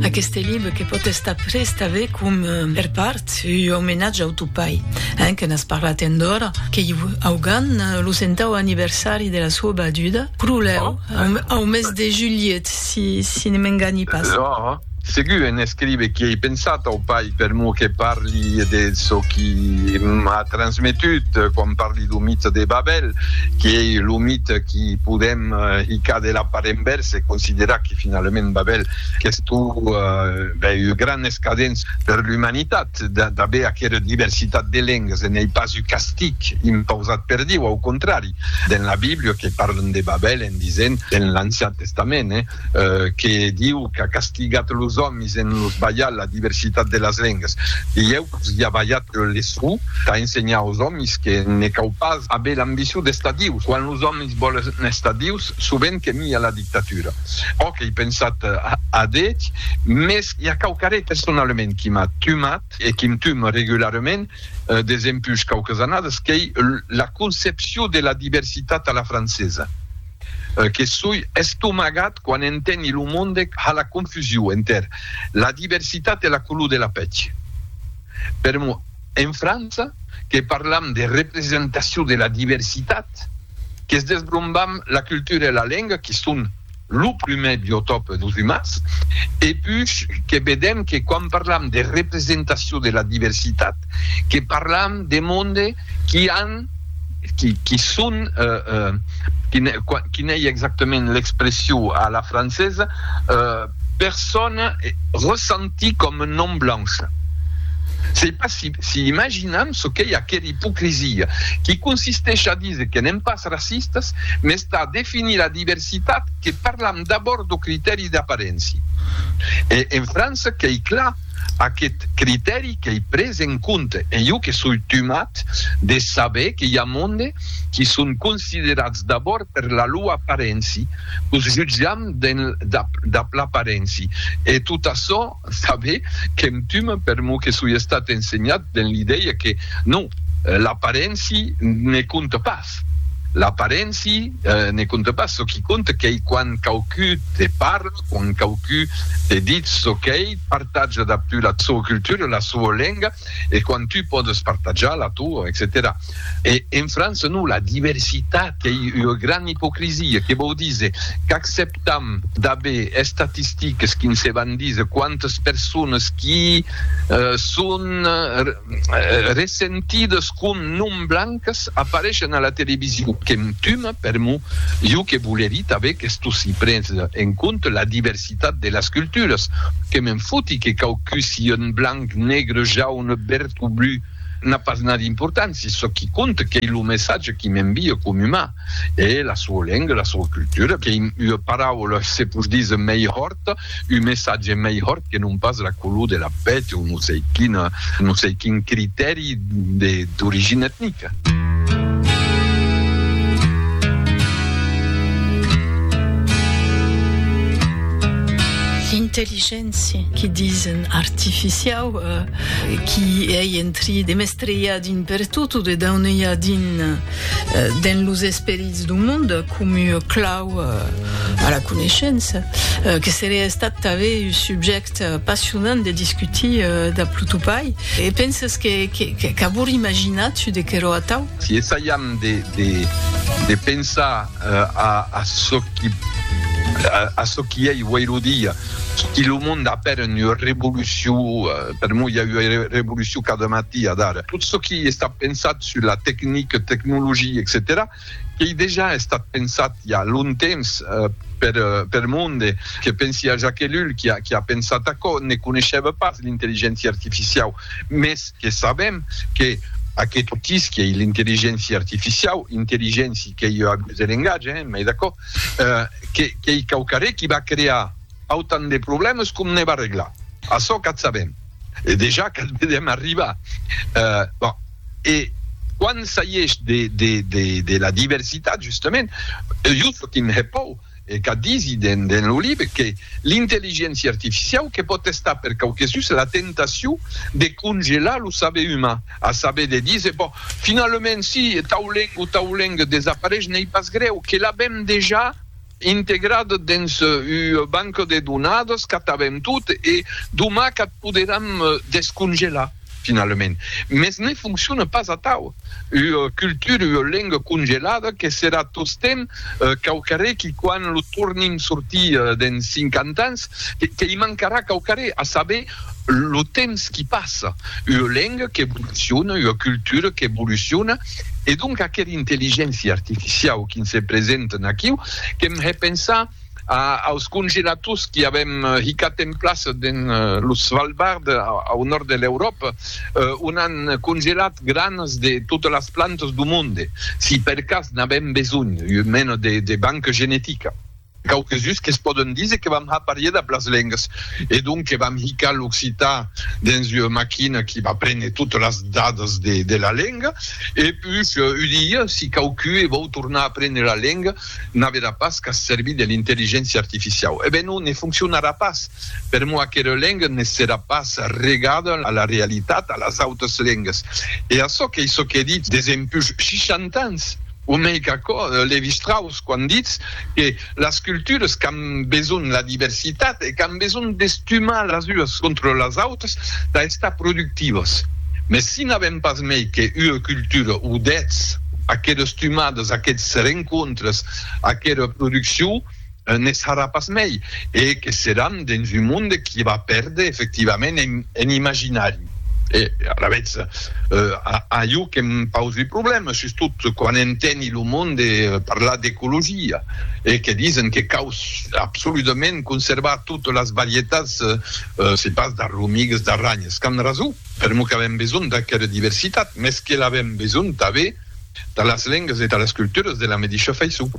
Aqueste libre que pòt estar pres tanben com per part ua omenatge au tau pair, hein, que n'as parlat endora, qu'ei augan lo centau anniversari de la sua baduda, pro lèu, au mes de julhet, si ne m'enganhi pas. Là, segur en escrive qu'i ei pensat au pair per mor que parli de çò qui m'a transmetut quan parli dau mite de Babèl, qui ei lo mite qui podem, i qu'a de la part envèrsa e considerar que finalament Babèl qu'estó bèi ua gran escadéns per l'umanitat d'aver aquera diversitat de lengas e n'ei pas un castig impausat per Dieu, au contrari, dens la Bíblia que parlan de Babèl en disent, dens l'Ancian Testament, que Dieu qu'a castigat los òmis en los balhar la diversitat de las lengas. Dieu vos i a balhat le sou tà ensenhar aus òmis que ne cau pas aver l'ambicion d'estar Dieu. Quand los òmis Sos boles n'estadius, sovent que mia la dictatura. Òc, ei pensat adéth, mès i a quauquarré personalament qui m'a tumat e qui'm tuma regularement desempuish quauques annadas, qu'ei la concepcion de la diversitat a la francesa, que soi estomagat quan enteni lo monde ha la confusion enter la diversitat e la color de la pèth. Per En França, que parlam de representacion de la diversitat, que's desbrombam la cultura e la lenga que son lo prumèr biotòp dos umans, e puish que vedem que quan parlam de representacion de la diversitat, que parlam de monde qui an, qui son, quin ei exactament l'expression a la francesa, persona ressentie coma non blancha. Sei pas si si imaginam çò qu'ei aquera ipocrisia, qui consisteish a díser que n'èm pas racistas, mès tà definir la diversitat que parlam d'abòrd d'o critèri d'aparéncia. E en França qu'ei clar. aqueth critèri qu'ei pres en compte e jo que soi tumat de saber que i a monde qui son considerats d'abòrd per la lua aparenci, qu'os jutjam dab l'aparenci e tot açò saber qu'em tumat per mo que soi estat ensenhat den l'idèia que non, l'aparenci ne compte pas. Pertot, l'aparenci ne compte pas, çò qui compte qu'ei quand quauqui te parle, quand quauqui te ditz çò qu'ei, partatja dab tu la soa cultura, la soa lenga, e quand tu pòdes partatjar la toa, etcetèra E en França non, la diversitat qu'ei ua gran ipocrisia, que vòu díser qu'acceptam d'aver estatistiques qui nse van díser quantes persones qui son, Ressentidas qu'un nom blancas apareishen a la television que'm tuma per mo, jo que volerí tanben qu'esto si prese en compte la diversitat de las culturas, que m'en foti que quauqu si un blanc, negre, jaune, verd o blu, n'a pas n'a d'importància, çò qui compte qu'ei lo messatge qui m'envia com umà. E la sua lenga, la sua cultura, qu'ei ua paraula, se pos díser, mei hòrt, un messatge mei hòrt que non pas la color de la pèl o non sei quina, non sei quin critèri d'origina etnica. Intelligéncia, que disen, artificiau, qui ei en tri de mestrejar din pertot o de daunejar din. dens los esperits d'un monde comu clau a la coneishença, que seria estat tanben un subjècte passionant de discutir dab lo topai. E penses qu'avor imaginat çu de querò atau? Si essaiam de pensar a çò qui ei uèi lo dia, si lo monde a peren ua revolucion, per moi i a ua revolucion cada matí, adara, tot çò qui està pensat sus la tecnic, tecnologia, etcetèra, qu'ei dejà estat pensat i a long temps per per monde, que pensi a Jacques Ellul qui a qui a pensat aquò, ne coneishèva pas l'intelligéncia artificiau, mès que sabèm que aqueth outís qui ei l'intelligéncia artificiau, intelligéncia qu'ei ua abús de lengatge, hein, m'ei d'acòrd, que qu'ei quauquarré qui va crear autant de problèmes com ne va reglar, açò qu'ath sabèm. E dejà que'l vedèm arribar. Bon, e quan s'aiesh de la diversitat, justament, jo sò qu'un hepòu, e qu'a disi dens lo libre que l'intelligéncia artificiau que pòt estar per quauquesus la tentacion de congelar lo saber uman, a saber de díser, bon, finalament, si tau lenga o tau lenga desapareish, n'ei pas grèu, que l'avèm dejà. integrat dens ua banca de donadas qu'ath avèm tot e doma qu'ath poderam descongelar finalament. Mès ne foncciona pas atau. Ua cultura, ua lenga congelada que serà tostemp quauquarré qui quan lo tornim sortir dens cinquanta ans, que i mancarà quauquarré, a saber lo temps qui passa, ua lenga qu'evoluciona, ua cultura qu'evoluciona, e donc aquera intelligéncia artificiau qui se presenten aquiu, qu'èm hè pensar aus congelators qui avèm hicat en plaça dens lo Svalbard, au nòrd de l'Euròpa, on an congelat granes de totas las plantas du monde, si per cas n'avèm besonh, ua mena de banca genetica. Quauques uns que's pòden díser que vam har parier dab las lengas e donc que vam hicar l'occitan dens ua maquina qui va préner totes las dadas de la lenga e puish ua dia si quauqu e vòu tornar a préner la lenga n'averà pas qu'a servir de l'intelligéncia artificiau. E ben non, ne foncionarà pas. Per moi aquera lenga ne serà pas regada a la realitat, a las autas lengas. E açò qu'ei çò qu'è dit des empush 60 ans. O mei qu'aquò, Lévi-Strauss, quand ditz que las cultures qu'an besonh la diversitat e qu'an besonh d'estumar las ues contra las autras tà estar productivas. Mès si n'avèm pas mei que ua cultura o dètz, aquera estumada, aqueths rencontres, aquera produccion, ne sarà pas mei e que seràn dens un monde qui va pèrder efectivament en imaginari e alavetz a jo que me pausi un problèma sustot quan enteni lo monde parlar d'ecologia e que disen que cau absoludament conservar totes las varietats se pas d'arromigas d'arranhas qu'an rason per'mor qu'avèm besonh d'aquera diversitat mes que l'avèm besonh tanben de las lengas e de las culturas de la medisha faiçon.